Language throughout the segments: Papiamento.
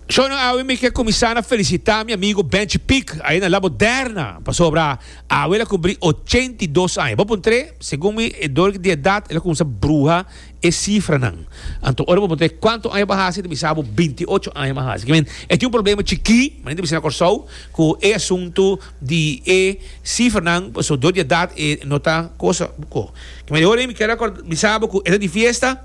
Shona awe mi ke kuminsá na felisitá mi amigo Benchi Pik ayá na La Moderna pasobra awe el a kumpli ochenta i dos aña. Bo puntr'é, segun mi e dor di edat el a kuminsá bruha e sifranan. Anto ora bo puntr'é kuantu aña bo hasi ta bisa bo binti i ocho aña bo hasi. Ki men e tin un problema chikí, men ta bisa na Kòrsou ku e asuntu di e sifranan pasobra dor di edat e no ta kos. Ki men e ora ei mi kier bisa bo ku e ta di fiesta.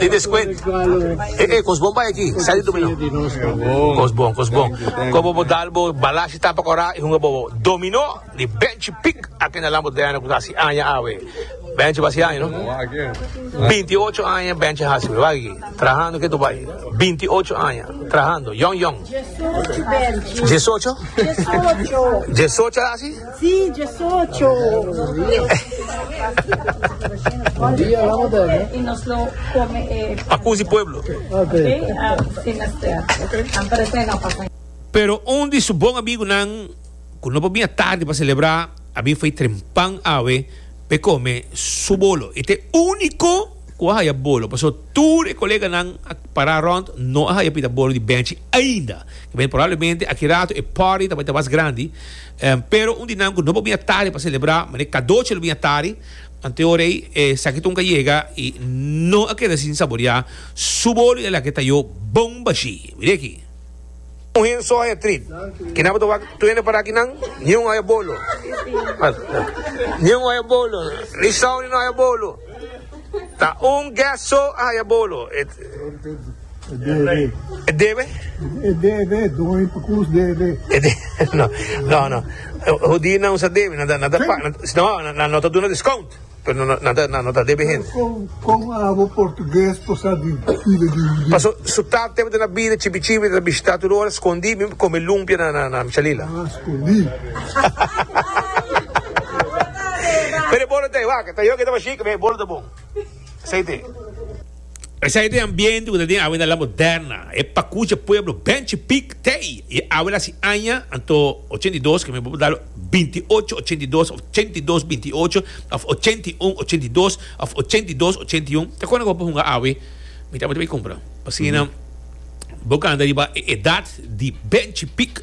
Di descuent. E e cos bon bay aki. Sa di dominó. Cos bon, cos bon. Co bobo dal bo bala si tapa cora y hunga bobo dominó di benchi pic aki na Lambo Diana cu ta haci aña awe. Benchi ba haci aña no. Binti ocho aña benchi haci we. Wak aki. Trahando ketu bay. Binti ocho aña. Trahando. Yong yong. Diesocho? Diesocho a haci. Pero un di su bon amigunan, ku no por bini tardi pa selebrá, a bin fai trempan awe pa e kome su bolo. E ta e úniko ku a haya bolo, pasó tur e koleganan a pará rònt no a haya pida bolo di bèchi ainda. Kiba porablemente aki ratu e party ta bai ta mas grandi. Pero un di nan ku no por bini atari pa selebrá, manera kadochi lo bini atari, ante ora ei e saketun ka yega i no a keda sin saboriá su bolu i a laga e tayó bon bashí. Mira aki. Un hen so haya trit. Kinan bo ta wak tuende para kinan? Niun haya bolu. Niun haya bolu. Ni Sauli no haya bolu. Ta un guest so a haya bolo. E debe. E debe? E debe, doño pa cus debe. E de, no, no, no. Hudí nan usa debe, nan ta, nan ta, pa, nan, no, nan no ta duna discount, pero nan, nan, ta, nan no ta debe hende. Con, con abo portugués posa di vida di hudí? Paso su tata tebe ta na bida chipi chipi, ta bishita tur ora, scondí, mi come lumpia na, na, na Michalila. Ah, scondí. Pero e bolo ta e wak, ta yo ke ta bashik, pero e bolo ta bon. Esei t'e. Esei t'e ambiente ku ta den awe na La Moderna. E pakucha pueblo ben chipik t'ei. E awe la si aña, anto ochenta i dos, ke mi bo por dalo binti i ocho ochenta i dos, òf ochenta i dos binti i ocho, òf ochenta i un ochenta i dos, òf ochenta i dos ochenta i un. Ta kona ku bo por hunga awe? Mi tabata bai kumpra. Asina bo kanta riba e edat di ben chipik.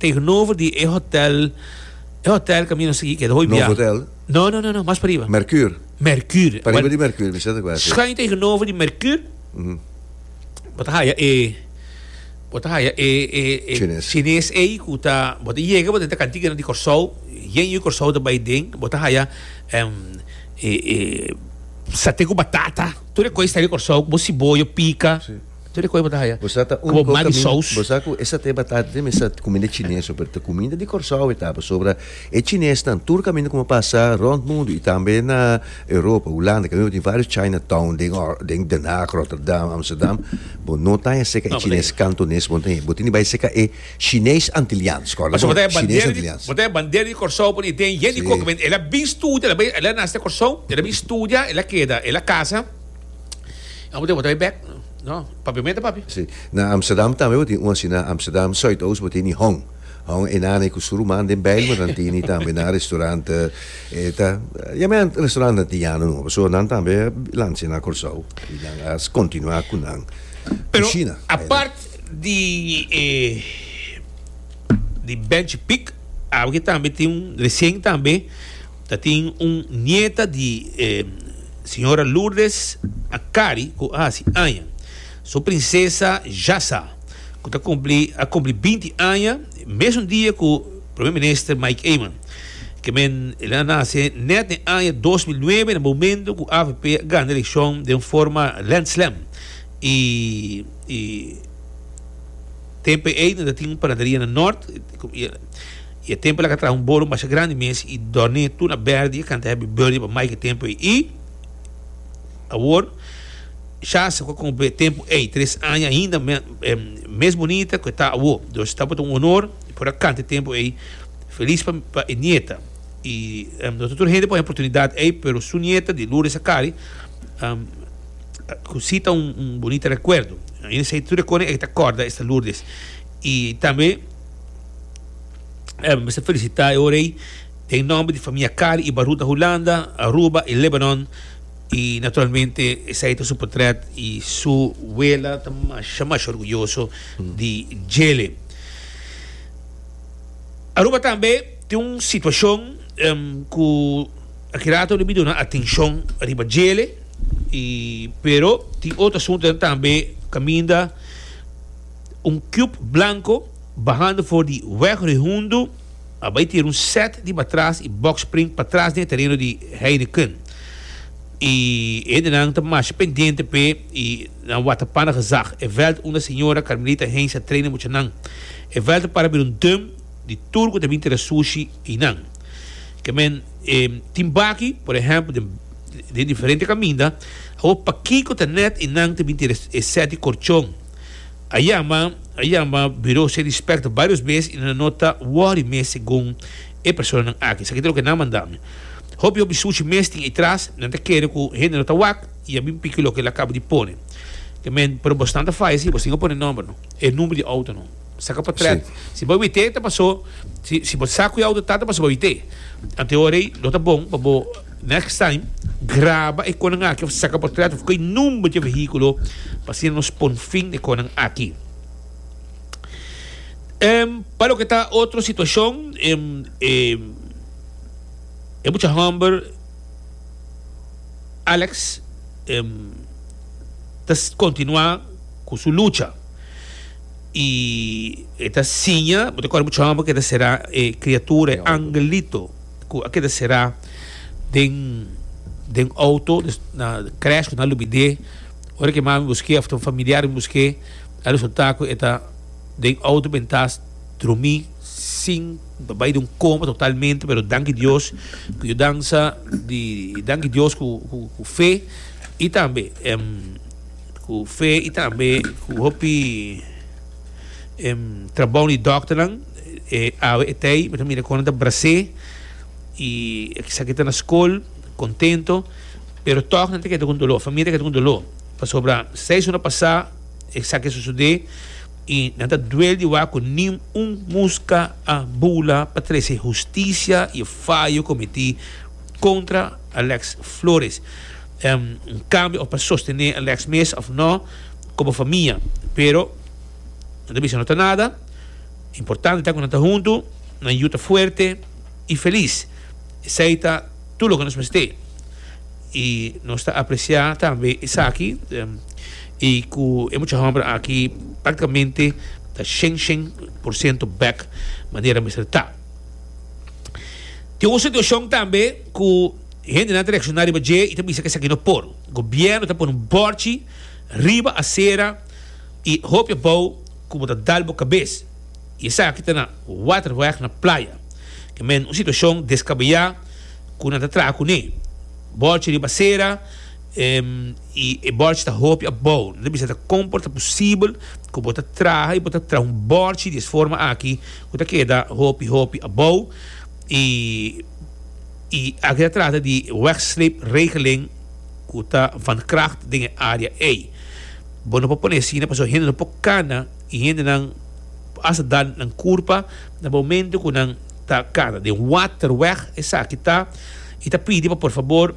Tegenover di e hotel, e hotel ka mi no sigui keda, hoi bia. Novo hotel? No, no, no, no, mas pariba. Mercure? Mercure. Pariba di Mercure, mi sienta ku así. Schuin tegenover di Mercure, bo ta haya e, bo ta haya e, e, e Chines. Chines ei ku ta, bo ta yega, bo ta enta kantigenan di Kòrsou, yen yu Kòrsou ta bai den, bo ta haya e, e, e, sate ku batata, tur e kos ta den Kòrsou, ku bo siboyo pika. Tur e kos bo ta haya ku bo mat di sous. Bo sa ku esate batata te mester ta kuminda chines ho pero ta kuminda di Kòrsou e ta pasobra e chinesnan tur kaminda ku bo pasa rònt mundu i tambe na Europa Hulanda kaminda bo tin vários China town den Den Haag Rotterdam Amsterdam bo no ta haya seka e chines kantones bo no ta haya bo tin di bai seka e shines antilians kòrda bo shines antilians. Bo ta haya bandera di Kòrsou pone den yen di koko men el a bin studia el a nase Kòrsou el a bin studia el a keda el a kasa. Amo tin botoi bek no papi mete papi. Si. Na Amsterdam tambe bo tin un asina. Amsterdam Zuidoost bo tin di hong. Hong e nana ku su ruman den bèil bo nan tin di tambe nan restaurant e ta ya men restaurant antiano nomba pasobra nan tambe a lancia na Kòrsou i nan a kontinuá ku nan kushina. Pero apart di e di bench pik aki tambe tin resien tambe. Ta tin un nieta di e Señora Lourdes Akari cu a haci aña. Su Princesa Jasa, cu ta cumpli, a cumpli binti aña mesun dia cu Primer Minister Mike Eman. Kemen el a nace net den aña dos mil nuebe na momento cu avp a gana eleccion den forma landslam y y tempo ey no ta tin un panaderia na Nort. I e tempo el a ka traha un boro masha grandi mes i dòrni tur na bèrdi i e kanta hèbi bèrdi pa mai ku e tempo ei. I awor Shasta ku a kumpli e tempo ei, tres aña ainda mes bunita ku e ta awor. Dor Shasta bo ta un onor por a kanta e tempo ei felis pa e nieta. I no ta tur hende pon e oportunidat ei, pero su nieta di Lourdes Akari ku si ta un bunita rekuerdo. Ainda esei tur e kòrda ei ta kòrda esta Lourdes i tambe. Em mester felisitá e ora ei den nòmber di famia Kari i Barut na Hulanda, Aruba i Lebanon. I naturalmente esei ta su potrèt i su wela ta masha masha orguyoso di djele. Aruba tambe tin un situashon ku aki rato no debí duna atenshon riba djele i pero tin otro asuntunan tambe kaminda. un cub blanco bahando for di weg Rehundo a bay tira un set di batras y boxspring patras den e tereno di Heineken y e hendenan ta masha pendiente p'e y nan wata pana gezag. E veld unda Señora Carmelita Heinz a traina muchanan. E veld a para bira un dum di tur cu ta bin tira sushi y nan. Ke men e tin baki, por ehempel den den diferente caminda, awor pakico ta net y nan ta bin tira e set di corchon. A yama, a yama Bureau Ser Dispert barios bes i nan no ta wòri mes segun e personanan aki. Esaki ta loke nan manda mi. Hopi hopi sushi mes tin ei tras, nan ta kere ku hende no ta wak i a bin piki loke el a kaba di pone. Ke men, pero bosnan ta faya si, bosin a pone nòmber no, e number di outo no. Saka potrèt. Si bo wit'é ta pasó, si si bo sa ku e outo ta, ta pasó bo wit'é. Anto e ora ei lo ta bon pa bo. Next time graba e konan aki of saka portret of koe number dje vehiculo pa asina nos pon fin e konan aki. Em pa loke ta otro situacion em e e mucha homber Alex em ta continua cu su lucha y e ta siña bo ta kore mucha homber cu e ta cera e criatura e angelito. cu a keda será den den auto des na crash cu nan a lo bide ora que mami busqué of ta un familiar a busqué a resulta cu e ta den auto bintá drumi sin ta bay den un coma totalmente pero danki Dios cu yudansa di danki Dios cu cu cu fe y tambe cu fe y tambe cu hopi trabou di doctornan. E awe e tei mi ta mira kono ta brasé i e esaki ta na skol kontento pero tòg nan ta keda ku un doló famia ta keda ku un doló pasobra seis ora pasá esaki a sosodé i nan ta duel di wak ku nin un muska a bula pa trese hustisia i e fayo kometí kontra Alex Flores kambio òf pa sostené Alex mes òf nò komo famia pero nan ta bisa no ta nada. Importante ta ku nan ta huntu, nan yu ta fuerte i felis. Esei ta tur loke nos mester. I nos ta apresiá tambe esaki i ku e mucha hòmber aki praktikamente ta shen shen por siento bèk manera mester ta. Tin un situashon tambe ku hendenan ta reakshoná riba dje i ta bisa ku esaki no por. Gobièrnu ta pone un bòrchi riba asera i hopi abou. ku bo ta dal bo kabes i esaki ta na Waterweg na Playa Kemen, un situashon deskabeyá ku nan ta traha kuné. Bòrchi riba sera i e bòrchi ta hopi abou. Nan ta bisa ta kon por ta posibel ku bo ta traha i bo ta traha un bòrchi di es forma aki ku ta keda hopi hopi abou i i aki ta trata di e wegsleepregeling ku ta van kracht den e área ei. Bo no por pone asina pasobra hende no por kana i hendenan por hasta dan nan kurpa na momentu ku nan ta kana. Den Waterweg esaki ta. I ta pidi pa por fabor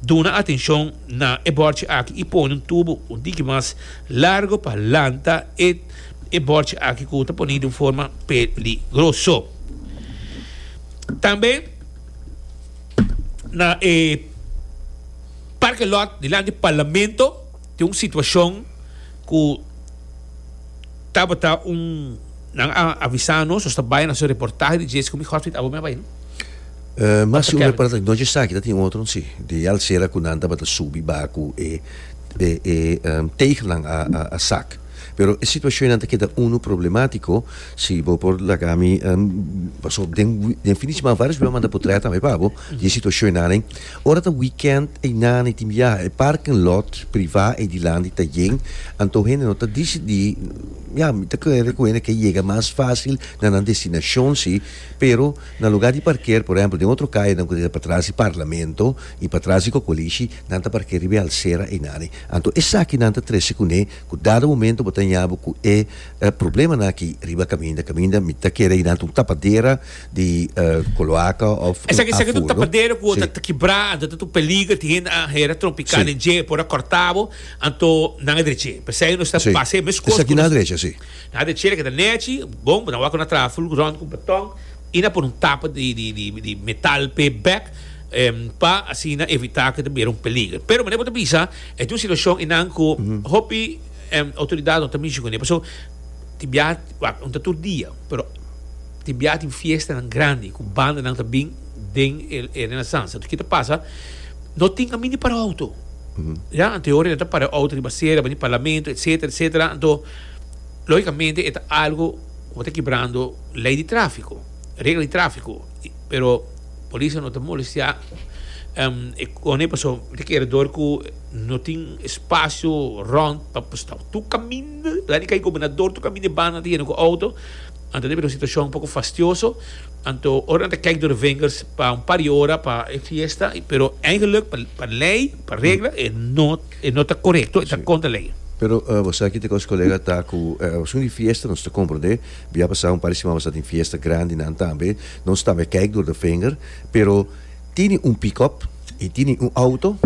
duna atenshon na e bòrchi aki i pone un tubu un tiki mas largu pa lanta e e bòrchi aki ku ta pone di un forma peligroso. Tambe na e parke lòt dilanti di Parlamento. Tin un situacion cu tabata un, nan a avisa nos nos ta bay na su reportahe di JSQ mi hospital abo mi a bay no? Pastor Kevin. No esaki, ta tin otro si, di e alcera cu nan tabata subi baha cu e e tegelnan a sak. Pero e situacionnan ta keda unu problematico, si bo por laga mi pasobra den fin di semana varios bey a manda portret tambe pa bo di e situacionanan. Ora ta weekend einana y tin biaha, e parking lot privá ei dilanti ta yen, anto hende no ta disidí, ya, mi ta kere ku hende ke yega mas fásil na nan destinashon sí, pero na lugá di parker, por ehèmpel den otro kayanan ku ta patras di Parlamento i patras di Kokolishi, nan ta park'é riba e alsera einane. Anto esaki nan ta trese kuné ku dado momento bo ta haña bo ku e problemanan aki riba kaminda. Kaminda mi ta kere ei nan ta un tapadera. di cloaca of aful. Esaki esaki ta un tapadero cu ta kibra anto ta un peliger tin hende a hera trompica den dje por a corta bo anto nan a dreche p'esey nos ta base e mescos esaki nan a dreche si nan a dreche loke ta nechi bon nan wak cu nan a traha ful rond cu un beton y nan a pone un tapa di metal p'e bek pa asina evita cu ta bira un peliger pero mane bo ta bisa e ta un situacion y nan cu hopi autoridad no ta mishi cu ne pasobra tin biaha wak no ta tur dia pero. Tin bia tin fiestanan grandi ku bandanan ta bin den e Renaissance. Anto ki ta pasa? No tin kamin di para outo. Ya, anto e ora nan ta para e outo riba sera, bani parlamento, etsetera, etsetera. Anto, logikamente e ta algu ku ta kibrando lei di trafiko, regla di trafiko. Pero polisnan no ta molestiá e kone pasobra mi ta kere dor ku no tin spasio rònt pa stòp. Tur kaminda, la di kai gobernador, tur kaminda e bandanan ta yena ku outo. Nan ta debe di un situashon poko fastioso, anto ora nan ta kijk dor e vingers pa un par di ora pa e fiesta, pero eigenlik pa lei, pa regla e no e no ta korekto, e ta kontra lei. Pero boso aki ta kos kolega ta ku pasobra di fiesta nos ta komprondé, bia a pasá un par di siman basta tin fiesta grandi nan tambe, nos tambe kijk dor dor vinger, pero tini un pikòp i tini un outo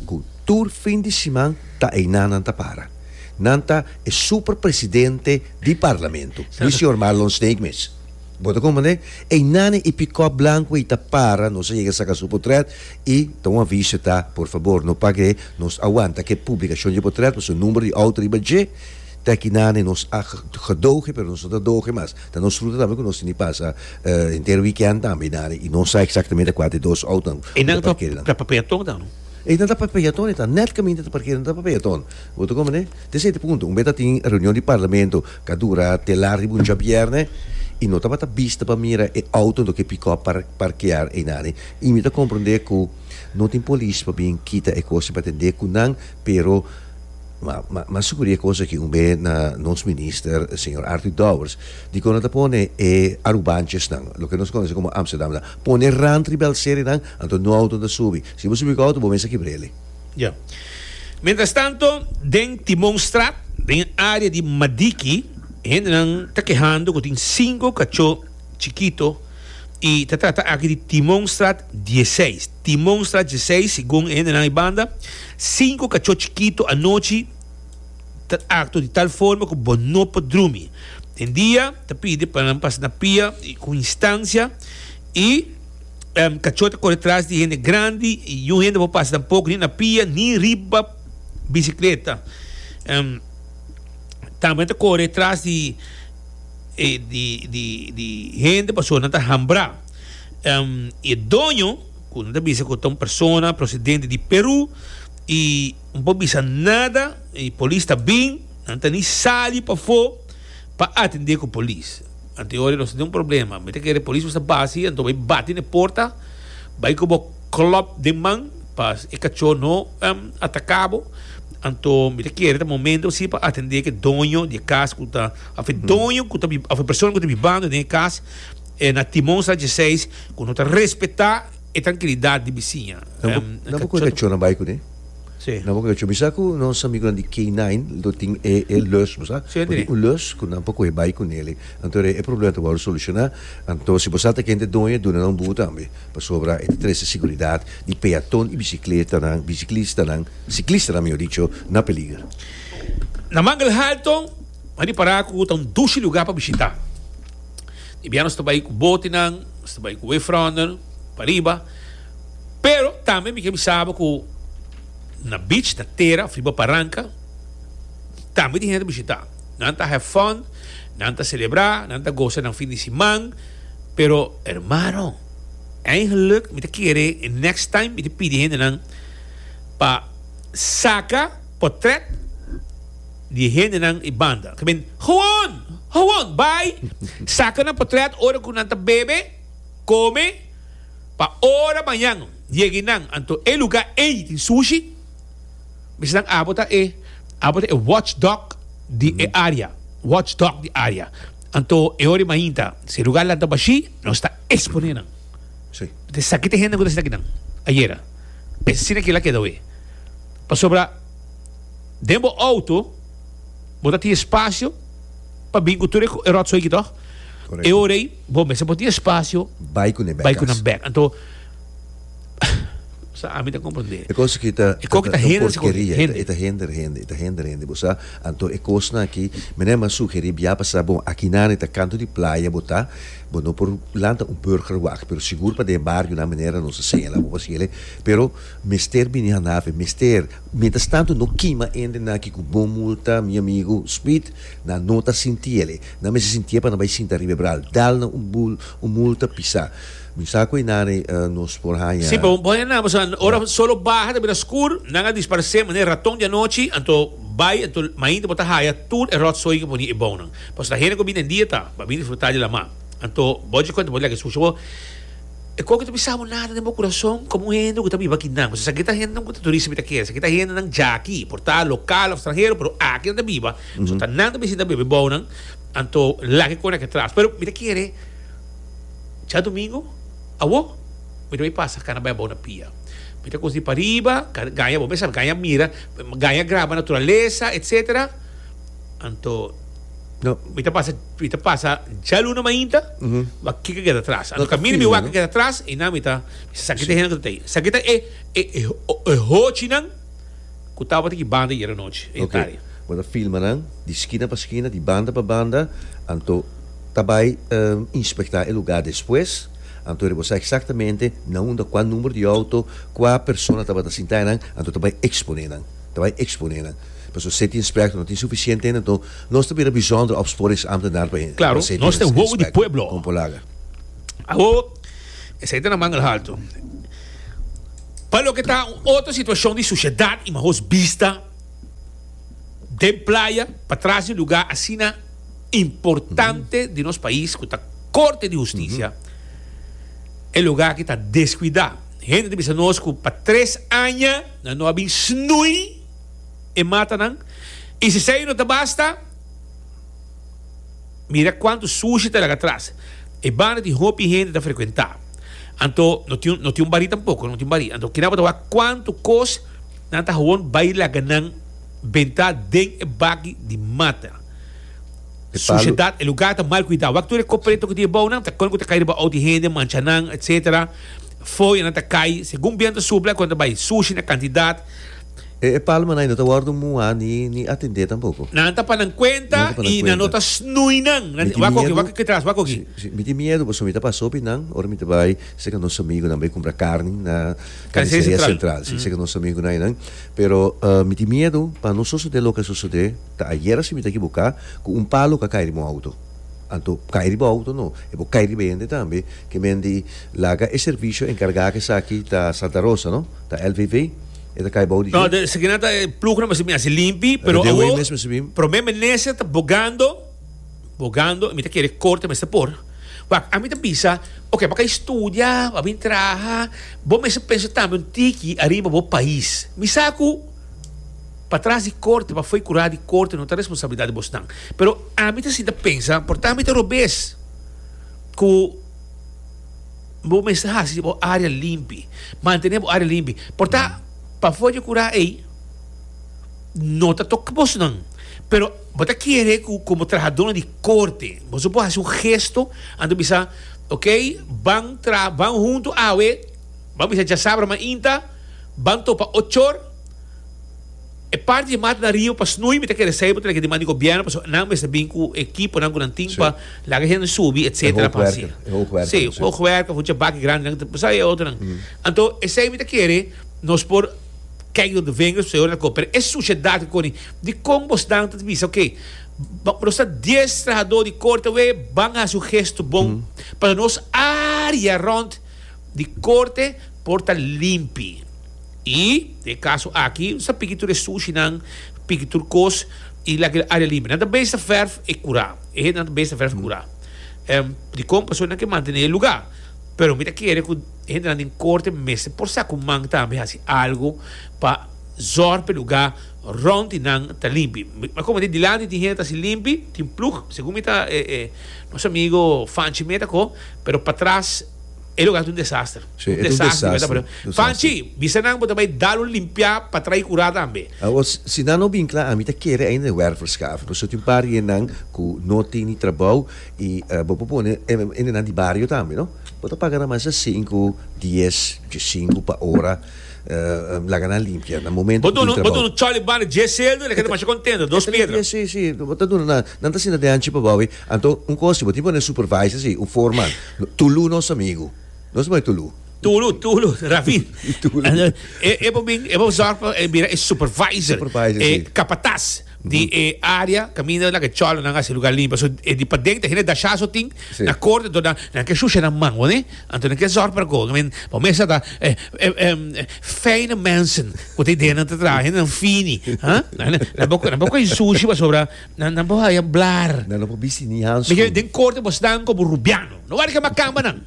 ku tur fin di siman ta einan nan ta para. Nan ta e super presidente di parlamento. Di señor Marlon Sneekmans. Bo ta comprende? Einan e pickup blanco ei ta para, nos a yega saca su portret y ta un aviso ta, por favor no pague, nos a wanta cu e publicacion dje portret pasobra numero di auto riba dje ta aki nan y nos a gedoge pero nos no ta doge mas. Ta nos fruta tambe cu nos tin di pasa henter weekend tambe einan y no sa exactamente cua ta e dos autonan cu ta parkerinan. E ta pa peaton e ta nèt kaminda ta parkera no ta pa peaton bo ta komo ne ta esei ta punto un be ta tin reunion di parlamento ka dura te lar riba un djabièrnè i no tabata bista pa mira e outo ento ke pikòp par parkea einane i mi ta komprondé ku no tin polis pa bin kita e kos i pa tendé ku nan pero ma ma ma suku di e kos aki un be na nos minister señor Arthur Dowers dikon a ta pone e arubanchesnan loke nos konosekomo amsterdamnan pone rant riba el seri nan Anto no auto ta subi. Si bo subi ku auto, bo mester kibr'ele. Ya. Mientrastanto, den Timonstraat, den e área di Madiki, hendenan ta kehando ku tin sinku kachó chikito i ta trata aki di Timonstraat dieseis. Timonstraat dieseis, segun e hendenan ei banda, sinku kachó chikito anochi ta aktua di tal forma ku bo no por drumi. Den dia ta pidi pa nan pasa na pia ku instansia i. Kachó ta kore tras di hende grandi i yun hende por pasa tampoko ni na pia ni riba bisikleta. Tambe nan ta kore tras di hende pasobra nan ta hambrá. E doño, ku nan ta bisa ku ta un persona prosidente di Perú, i no por bisa nada, i polis ta bin, nan ta ni sali pafó pa atendé ku polis. Anto ora nos tin un problema mi ta kere polis por sa bas hi anto bai bati na e porta bai ku bo klòp den man pa e kachó no ataka bo anto mi ta kere ta momento si pa atende ke doño di e kas ku ta òf e doño ku ta òf e persona ku ta bibando den e kas e na Timon Sánchez Seis ku no ta respetá. E trankilidat di bisiña. Nan por kunda kachónan bai kuné. Nan por kunda kachó. Mi sa ku nos amigunan di K-nine lo tin e lùs, bo sa. Bo tin un lùs ku nan por kohe bai ku neli. Anto e problema ta wòrdu solushoná. Anto si bo sa ta kende doño, duna nan un buhu tambe. Pasobra e ta trese siguridat di peaton i bisikletanan, bisiklistanan, siklistanan mihor dicho, na peliger. Na Manglhalton. M'a ripará ku ta un dushi lugá pa bishitá. E biaha nos ta bai ku botenan, nos ta bai ku wavefronder pa riba, pero tambe mi ke bisa bo ku na beach, na tera of riba baranka tambe tin hende ta bishitá. Nan ta have fun, nan ta selebrá, nan ta gosa nan fin di siman, pero hermano, eigentlik mi ta kere e next time mi ta pidi hendenan pa saka potret. di e hendenan i banda. Ta bin, Gewoon! Gewoon! Bai saka nan potrèt ora ku nan ta bebe, kome, pa ora mañan yegi nan. Anto e lugá ei tin sushi. Misinan abo ta e, abo ta e watch dog di e área. Watch dog di área. Anto e ora di mainta, si e lugá lanta bashí, nos ta eksponé nan. Sí. Esaki ta e hendenan ku ta sinta aki nan ayera. Asina kila keda awe. Pasobra. den bo auto bo ta tin espacio pa bin cu tur e rotzooi aki toch? Correcto. E ora ei bo mester por tin espacio Bai cu nan bek cu nan cas. bek. Anto sa ami ta comprende. E cos aki ta E coki ta un hender si con porqueria, hende. e ta hender hende, e ta hender hende, bo sa. Anto e cosnan aki mi no a mas sugeri bia pa sa bon akinan e ta canto di playa bo ta bo no por lanta un burgerwag pero sigur pa den e barionan manera nos ta señala bo pa haci elei pero Mester bini hanafe, mester. Mientras tanto no kima hende na ki ku bon multa, mi amigu Speed nan no ta sintiele, nan mester sintié pa nan bai sinta riba e bral, dal nan un bul, un multa pisá. Mi sa ku einari nos por haña. Si, pero bo haña nan, bo sa ora solo baha ta bira skur, nan a disparesé manera raton di anochi, anto bai, anto mainta bo ta haya tur e ròtsoi ku poni e bounan. Pasobra hende ku a bini den dia ta, bo a bini disfrutá di laman. Anto bo dje kuenta bo lek e sushi bo, E kos ku ta bisa bo nada den bo kurason komo un hende ku ta biba aki nan. Pues esaki ta hendenan ku ta turista mi ta kere. Esaki ta hendenan dja aki, por ta lokal òf stranhero, pero aki nan ta biba. So ta nan ta bisita bebe bou nan, anto lak e kona aki atras. Pero mi ta kere djadumingu awo mi ta bai pasa kana bai a bou na pia. Mi ta kos di pariba, gaña bo mes a gaña mira, gaña graba naturalesa, etcetera. Anto. No. Mi ta pasa, mi ta pasa dja luna mainta, mm -hmm. wa kika keda tras. Ando ka mira mi waka keda tras, e na mi ta, mi sa sakita hena kutei. Sakita e, e, e, e hochi nan, kutaba tiki banda yera nochi, e okay. tari. Wada filma nan, di skina pa skina, di banda pa banda, anto tabai um, ehm, inspekta e lugar despues, anto ribo sa exactamente, na unda, kua number di auto, kua persona tabata sinta nan, anto tabai expone nan. Ta bai exponé nan. Pasobra se tin spèk no tin sufisiente ainda anto nos ta bira bizondere opsporingsamt ta dar pa e. Claro, nos ta e wowo di pueblo. Kon por laga. Awo, esei ta na manga haltu. Pa loke ta un otro situashon di sushedat i mahoz bista den playa patras di lugá asina importante di nos pais ku ta Korte di Hustisia, e lugá aki ta deskuidá. Hende ta bisa nos ku pa tres aña. Nan no a bin snui e matanan i si esei no ta basta, mira kuantu sushi ta laga atras. E banda tin hopi hende ta frekuentá. Anto no tin no tin un barí tampoko, no tin barí. Anto kina bo ta wak kuantu kos nan ta hawon bai laga nan bentá den e bagi di mata. Sushedat, e lugá ta mal kuidá. Wak tur e kopre tok di e bounan, ta kon ku ta kai riba outi hende, mancha nan, etsetera. Fo'i nan ta kai segun biento supla ku nan ta bai sushi na kantidat. E palmanai no ta wòrdu muhá ni atendé tampoko. Nan ta pa nan kuenta i nan no ta snui nan. Nan tin, Wak oki, wak oki tras, wak oki. Sí, sí, mi tin miedu pasobra mi ta pasó pi nan ora mi ta bai serka nos amigunan bai kumpra karni na Karniseria Sentral. Sí, serka nos amigunan einan. Pero mi tin miedu pa no sosodé loke a sosodé ta ayera si mi ta ekiboká ku un palu ku a kai riba un outo. Anto kai riba outo no, e por kai riba e hende tambe, ke men di laga e servisho enkargá ku esaki ta Santa Rosa no, ta LVV, e ta kai bou di dje. Esaki nan ta e plugnan mester mi hasi limpi, pero awo promé minister ta bogando, bogando, mi ta kere korte mester por, wak ami ta bisa, ok, bo a kai studia, bo a bini traha, bo mester pensa tambe un tiki ariba bo pais, mi sa ku. Pa tras di korte, pa fo'i kurá di korte no ta responsabilidat di bosnan. Pero ami ta sinta pensa, por tambe ta robes ku bo mester hasi bo área limpi, mantené bo área limpi. Por ta pafó dje kurá ei no ta tok bosnan, pero bo ta kere ku komo trahadónan di korte boso por hasi un gesto anto bisa, Okey, ban tra, ban huntu awe, ban bisa djasabra mainta, ban topa ochor. E parti di mat na riba pa snoei mi ta kere esei bo ta leke diman di gobierno pasobra nan mester bin cu ekiponan cu nan tin pa laga e hende subi etcetera pa haci si e hoog werk of un chabaki grandenan ta sa e otronan anto esei mi ta kere nos por kijk dor de vengers pasobra e ora ta cor pero e suciedad ki coni dicon bo snan ta bisa oke nos ta dies trahador di corta wee ban haci un gesto bon pa nos area rond di corte por ta limpi. I e kaso aki sa piki tur e sushinan, piki tur kos i lak el aria limpia. Nan ta bes ta vèrf e kura. E hendenan ta bes ta vèrf kura. Dikon? Pasobra nan ke mantené e lugá. Pero mi ta kere ku e hendenan den korte mester por sa ku man tambe hasi algu pa zòrg pa e lugá rònt di nan ta limpi. Mi komo di dilanti tin hende ta hasi limpi, tin plug, segun mi ta e nos amigu Fanchi meta ko, pero patras. E lugar ta un desaster. Sí, e ta un desaster. Un desaster, un desaster. Panchi, bisa nan bo ta bai dal un limpiá pa trai curá tambe. Awor, si nan no bin cla, ami ta kere ainda e wervelskaf. Nos tin un par yen nan cu no tin ni trabou y bo por pone ende nan di bario tambe, no? Bo ta paga nan mas a cinco, dies, diesinco pa ora. Laga nan limpia na momento cu tin trabou. Bo duna chòl y banda dje celdo, el a keda masha contento. Dos piedra. Sí, sí, bo ta duna nan. Nan ta sinta den anchi pa bou. Anto un cos si bo tin pone supervisor si un foreman tulu nos amigo nos ta pone tulu. Tulu tulu Rafi e bo bin e bo zorg pa e bira e supervisor e capataz di e area caminda lak e cholo nan hasi lugar limpio so e di paden ta hende dasha so tin na corte anto nan nan ke shusha nan man wone anto nan ke zorg pa go I mean bo mester ta fijne mensen cu ta idea nan ta traha hende nan fini ha nan bo cu e sushi pasobra Nan nan por haya blar. Nan nan por bisti ni hanskun. Miguel, den corte bo snan como Rubiano. No wari ke macamba nan.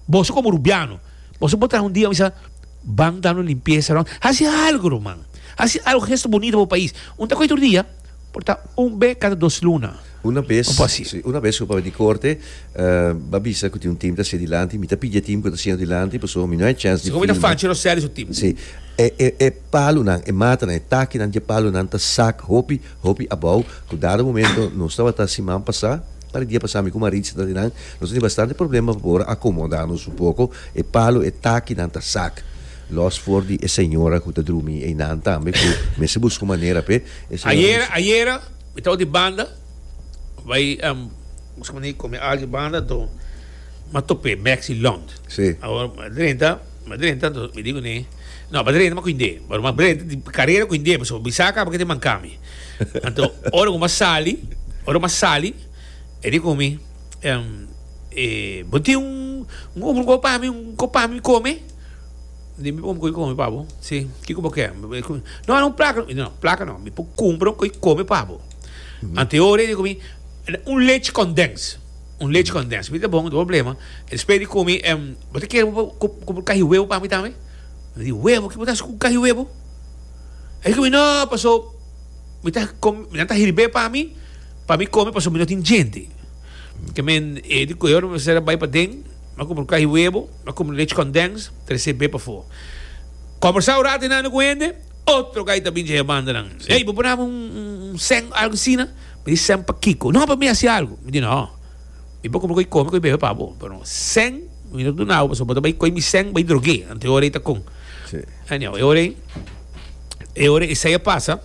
Boso como Rubiano. Boso por traha un dia bisa ban dando limpieza rond. Haci algo ruman. Haci algo gesto bonito pa bo pais. Un ta coge tur dia. Por ta un be cada dos luna. Una bes, Un por haci. si, una bes cu papia di corte ba bisa cu tin un team ta hacia dilanti, mi ta pidi e team cu ta haciendo dilanti pasobra mi no hay chance di Así como filma. mi ta fanchi Roseli su team. Si, e, e, e palunan, e matanan, e takinan di e palunan ta sak hopi. Hopi abou, ku dado momento nos tabata siman pasá, pa di dia pasá mi ku Maritza ta di nan, nos tene bastante problema pa por akomoda nos un poko, e palo, e takinan ta sak, lòs for di e señora ku ta drumi einan tambe ku mester buska un manera p'e, e señora ta di. Ayera, ayera mi tabata di banda, bai buska manera di kome algu banda, to mi a top'é Maxi Lond, mi a drenta, mi a drenta, mi di kuné. No, bo ta renta mas ku hindé. Bo ta renta di karera ku hindé pasobra bo bisa kaba ke tin mankami. Anto ora ku bo a sali, ora ku bo a sali e di ku mi, e, bo tin un un kos pa mi, un kos pa mi kome? Mi di, un kos di kome pa bo? Si, kiko bo ke? No, un plaka. Mi di, no, plaka no. Mi por kumpra un kos di kome pa bo. Anto e ora e di ku mi, un lechi kondens. Un lechi condens mi ta bon, no problema. Despues di cumi e bo ta kere cu bo cahi huevo pa mi tambe? Mi di, Huevo? Ki bo ta haci cu cahi huevo? E cu mi, No, paso mi ta com, nan ta hirb'e pa mi, pa mi come paso mi no tin djente. Te men e di coge ora mester a bay paden, a compra un cahi huevo, a compra un lechi condens, trece b'e pafo. Conversa un rato enano cu hende, otro gay ta bini dje e banda nan. Ey, bo bo nabe un seng, algo asina? Mi di, Sen pa kiko? No, pa mi hasi algu. Mi di, No, mi por kome ku e kome ku e bebe pa bo, pero sen mi no ta duna bo pasobra bo ta bai koi mi sen bai drog'é. Anto e ora ei ta kon. Anyao, e ora ei, e ora ei esei a pasa,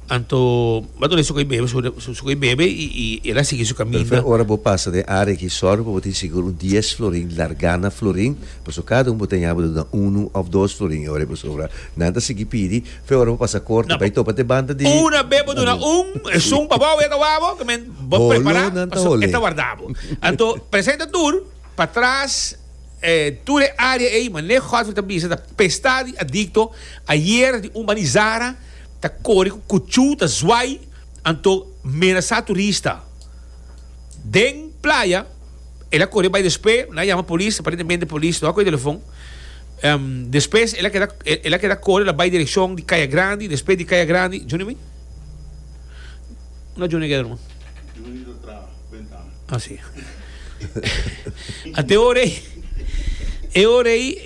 anto bo ta duna esei ku e bebe, su ku e bebe i el a sigui su kaminda. Ora bo pasa den área aki, sòrgi pa bo tin sigur un dies florin largá na florin, pasobra kada un bo ta ña bo ta duna unu òf dos florin e ora ei pasobra nan ta sigui pidi. Fe ora bo pasa corte bay topa te banda di. Una be bo duna un esun pa bo wega wabo ke men bo prepara paso e ta warda bo. Anto presenta tur pa tras e tur e area ey mane Godfrey ta bisa ta pesta di adicto ayer di un banizara ta kore cu kuchu ta zwai anto menasa turista den playa ela kore bay despues na yama polis aparentemente polis no a koe telefon Despues el a keda el a keda kore la bai direkshon di Kaya Grandi, despues di Kaya Grandi, Junior mi? Unda Junior a keda ruman? Junior ta tra bentana. Ah si. Ante e ora ei e ora ei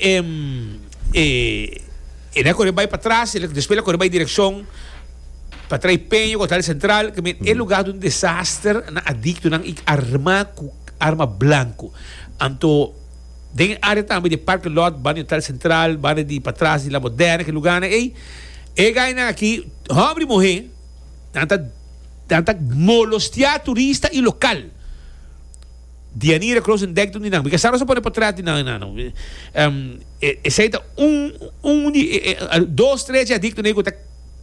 el a kore bai patras, despues el a kore bai direkshon pa trae Peña ku Hotel Sentral, e luga ta un desaster, nan adiktonan i arma ku arma blanku, anto Den e área tambe di Parke Lòt, banda di Hotel Sentral, banda di patras di La Moderna, ki lugánan ei, e gainan akí, hòmber i muhé, nan ta nan ta molostiá turista i lokal. Dianira Kroosendijk ta un di nan. Mi ka sa nos a pone potrèt di nan nan. Esei ta un un di dos tres dje adik ne'e ku ta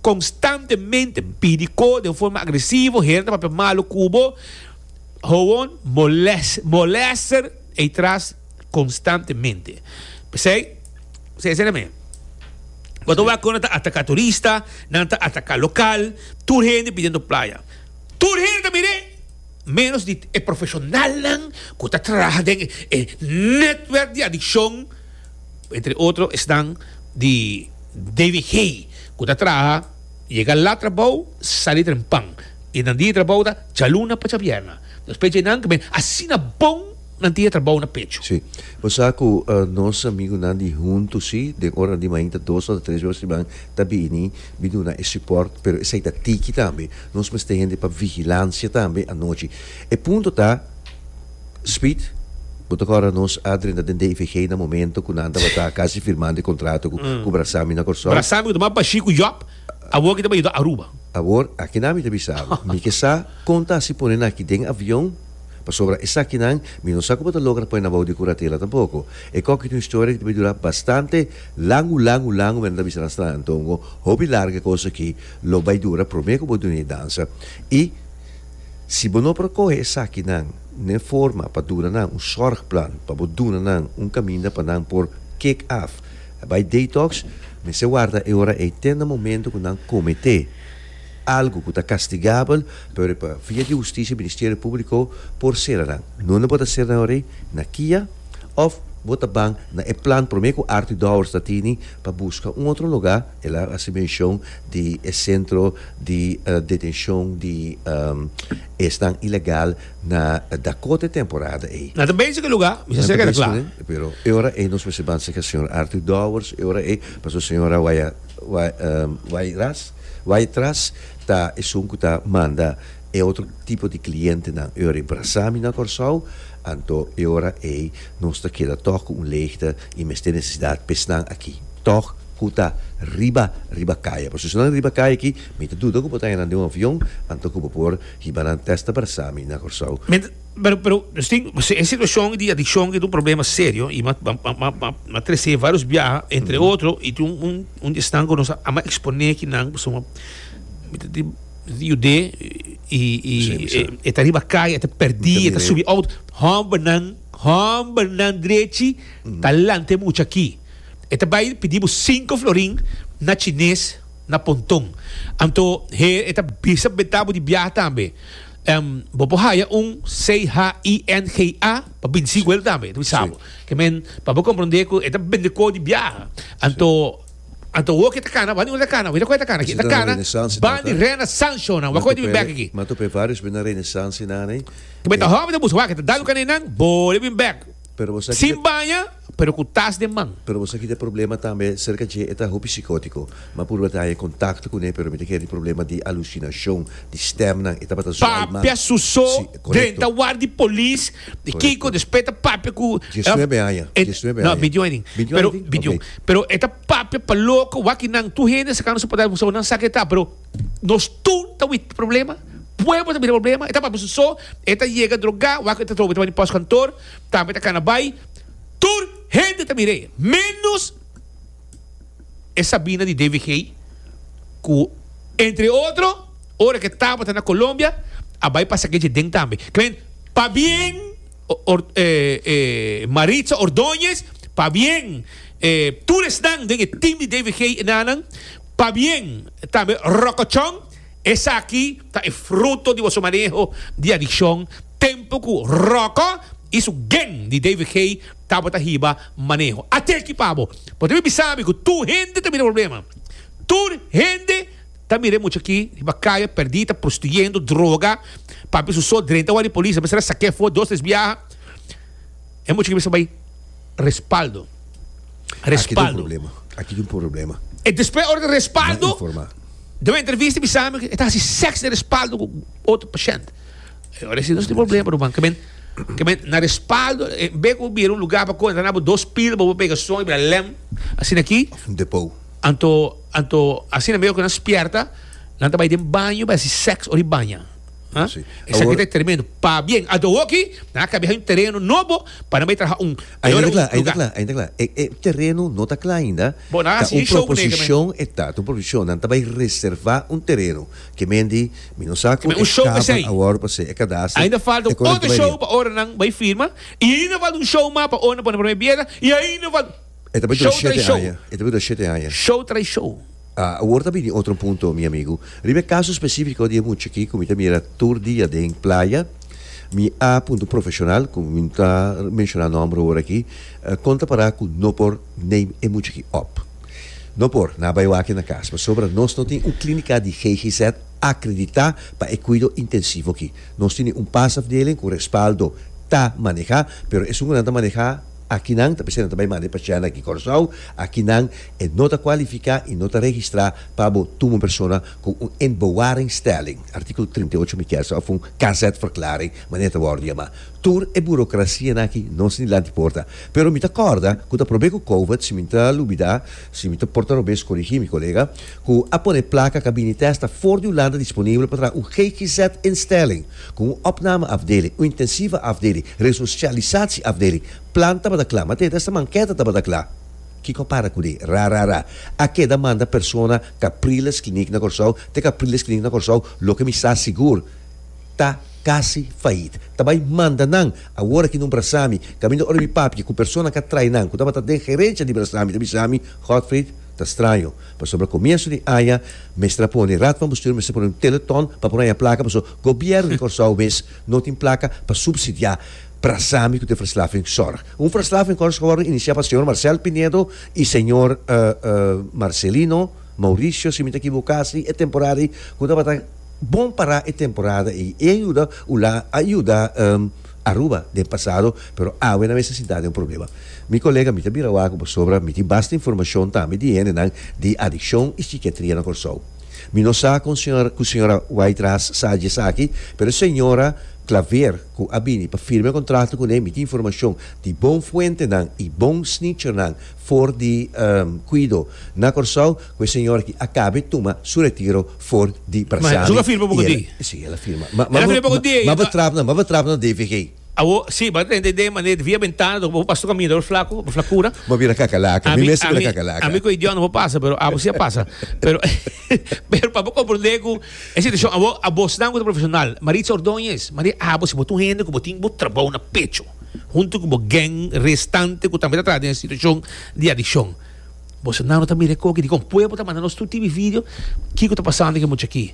konstantemente pidi ko den forma agresivo, heren ta papia malu ku bo, hoon molèster. Ei tras konstantemente. P'esei, esei ta nam'é. Bo ta wak kon nan ta ataká turista, nan ta ataká lokal, tur hende bidiendo playa. Tur hende ta mir'é, ménos di e profeshonalnan ku ta traha den e nètwèrk di adikshon, entre otro esnan di DVG ku ta traha yega lat trabou, sali trempan, e nan di trabou ta djaluna pa djabièrna. Nos peche nan kome asina bon nan tin e trabou na pecho. Sí. Bo sa ku nos amigunan di huntu sí, den ora di mainta dos ota tres bos riba ta bini bin duna e sipòrt, pero esei ta tiki tambe. Nos mester hende pa vigilansia tambe anochi. E punto ta, Speed, bo ta kòrda nos a drenta den DIVG na momento ku nan tabata kasi firmando e kontrato ku Brasami na Kòrsou? Brasami ku ta mas bashí ku Jòb. Awor ki ta bay ta Aruba. Awor, aki nan mi ta bisa bo. Mi ke sa kon ta hasi pone nan aki den avion, pasobra esaki nan mi no sa ku bo ta logra pone nan bou di kuratela tampoko. E kòk i ta un historia ki ta bay dura bastante langu, langu, langu, mi a nan ta bisa nan stra anto un hopi larga e kos aki lo bay dura promé ku bo duna e dansa. I si bo no por a kohe esaki nan n'e forma pa duna nan un sòrgplan pa bo duna nan un kaminda pa nan por kick off, E bai detox, mester warda e ora ei te na momento ku nan kometé algu ku ta kastigabel, pero pa via di hustisia Ministerio Públiko por sera nan. Nunde bo ta sera nan ora ei? Na kia? Òf bo ta ban na e plan promé ku Arthur Dowers ta tini pa buska un otro lugá? El a hasi menshon di e sentro di detenshon di esnan ilegal. na da kote temporada ei. Na ta bensha ku e lugá, mi sa sègera kla. Pero e ora ei nos mester ban sègera señor Arthur Dowers, e ora ei pasobra señor a waya wai ras wai tras ta esun ku ta manda e otro tipo di klientenan. E ora ei brasa mi na Kòrsou, anto e ora ei nos ta keda tòg ku un leegte i mester nesesidat pa esnan aki, tòg ku ta riba riba kaya. Pasobra si no ta riba kaya aki, mi ta duda ku bo ta haña nan den un avion anto ku bo por Hiba nan testa bersa mi na Corsou. Mi ta pero pero nos tin e situacion di adiccion e ta un problema serio y mi a trece varios biaha entre otro y tin un un di esnan cu nos a ama expone ki nan pasobra mi ta tin mi ta yude y y e ta riba calle e ta perdi e ta subi auto hombernan hombernan drechi ta lanta e mucha aki e ta bay pidi bo cinco florin na chines. na ponton. Anto he e ta bisa beta bo di biaha tambe. Em, bo por haya un CHINGA pa binsi cu el tambe, e ta bisa bo. Ke men, pa bo comprende cu e ta bende coho di biaha. Anto, anto wo ke ta cana, wani ora ta cana? Weta cu e ta cana aki? E ta cana ban di Renaissance-o nan. Wak cu e ta bin bek aki? Nan ta p'e varios benda Renaissance-nan ey. Ke men ta hopi ta buska wak, e ta dal un cana ey nan, bo debe bin bek. Sin baña, pero cu tas den man. Pero bo sa ki ta problema tambe cerca dje e ta hopi psicotico. Ma purba ta haña contacto cu ne pero mi ta kere di problema di alucinacion, di stemnan, e tabata zuai man. Papia su so den ta war di polis, di kico, despues ta papia cu. Diesnuebe aña, diesnuebe aña. No, bintiun aña tin. Bintiun aña tin? Pero e ta papia pa loco, wak ki nan tur hende a sakando su patat, bo sa bo nan sa ke ta pero. Nos tur ta wit problema, pueblo ta bira problema, e ta papia su so, e ta yega droga, wak e ta trobo e ta bani pos kantor, tambe ta kana bai, tur hende ta mir'e, menos e Sabina di DVG ku entre otro ora ke tabata na Colombia a bai pasa keje den tambe. Klen, pa bien Maritza Ordoñez, pa bien tur esnan den e team di DVG e nanan. Pabien, tambe rokochon, esaki ta e fruto di boso maneho di adikshon tempu ku Roko i su geng di David Haye tabata hiba maneho. Ate ki pabo, bo ta bin bisa mi ku tur hende ta mira e problema. Tur hende ta mira e mucha ki riba kaya pèrdí, ta prostituyendo, droga, papia su so drenta wak di polis, a mester a sak'é for dos tres biaha. E mucha ki bisa bai respaldo. Respaldo. Aki tin problema. E despues ora di respaldo. Den un entrevista bisa mi e ta hasi seks den respaldo ku otro pashent. Ora si nos tin problema ruman. Kemen kemen na respaldo be ku bira un lugar pa kontra nabo dos pil bo bo pega son i bira lèm asina aki. Of un depo. Anto anto asina mihor ku nan spierta nan ta bai den baño bai hasi seks ora i baña. Huh? Sí. Esa Awor- vida tremendo. Pa bien, a do hoki, na ka biha un terreno nobo para me traha un Ainda ayora un klaar, ainda lugar. klaar, ainda klaar. E, e terreno no ta klaar ainda. Bo, na Ta hasi un show, nega, proposition e ta, ta un proposition. Nan ta bay reserva un terreno. Ke men di, mi no sa ku Men e un show kaba besei. awor pa se e cadastro. Ainda falta e un correct otro bay show riba. pa ora nan bay firma. Y ainda falta un show mas pa ora nan pone primer piedra. Y ainda falta... E ta bini otro shete aña. E ta bini otro shete aña. Show tras show. Awor ta bini otro un punto mi amigo. Riba e caso specifico di e mucha aki cu mi ta mira tur dia den playa, mi a punta un profesional cu mi no ta menciona nomber awor aki, con ta para cu no por name e mucha aki op? No por, nan a bay wak e na cas pasobra nos no tin un clinica di GGZ acredita pa e cuido intensivo aki. Nos tin un pasafdeling cu respaldo ta maneha pero esun cu nan ta maneha, Aki nan, ta p'esei nan ta bai manda e pachèna aki Kòrsou, aki nan e no ta kualifiká i no ta registrá pa bo tuma un persona ku un en bewaringstelling, artíkulo trinta i ocho mi kèsa òf un KZ-verklaring, manera ta wòrdu yamá. Tur e burokrasianan aki no sin dilanti porta. Pero mi ta kòrda ku ta prob'é ku Kovac, si mi ta lubidá, si mi ta porta robes korigí mi kolega, ku a pone plaka Kabinitest ta for di Hulanda disponibel pa traha un GGZ-instelling, Ku un opname afdeling, un intensiva afdeling, resosialisatie afdeling, plan tabata kla, ma te e desta manketa tabata kla. Kiko a para ku dé? Ra ra ra. A keda manda persona Capriles Clinic na Kòrsou te Capriles Clinic na Kòrsou, loke mi sa sigur ta kasi fayit. Ta bai manda nan awor aki non Brasami, kaminda ora mi papia ku persona ka trai nan ku tabata den gerensia di Brasami ta bisa mi, Godfried, ta straño. Pasobra comienso di aña mester a pone Raad van Bestuur mester pone un telethon pa por haña placa paso Gobierno di Corsou mes no tin placa pa subsidia Prasami cu ta Verslaving Zorg. Un Verslaving Zorg a wordo inicia pa Señor Marcel Pinedo y Señor Marcelino Mauricio si mi ta equivoca si e temporada ayi cu tabata bon para e temporada ayi. E ayuda ula a yuda. Aruba den pasado pero awe na mester sintá den un problema. Mi kolega mi ta bira wak pasobra mi tin basta informashon tambe di hendenan di adikshon i sikiatria na Kòrsou. Mi no sa kon señora ku señora Wytras sa dje esaki pero e señora Claver ku a bini pa firme kontrakto kuné mi tin informashon di bon fuentenan i bon snitchernan for di kuido na Kòrsou ku e señora ki a kabe tuma su retiro for di Brasari. Su ka firma poco di. Si el a firma. Ma ma ma bo trap na ma bo trap na DVG. Awo si bo a trenta idee mane via bentana bo pasa to caminda bo flaco bo flacura. Bo bira cacalaca mi mes a bira cacalaca. Ami cu idiot no bo pasa pero abo si a pasa pero pero pa bo comprende cu e situacion awo abos nan cu ta profesional Maritza Ordoñez Maria abo si bo ta un hende cu bo tin bo trabou na pecho hunto cu bo gang restante cu tambe ta traha den e situacion di adiccion. Bolsonaro ta mira e koki dikon pueblo ta manda nos tur TV video kiko ta pasando den e mucha aki.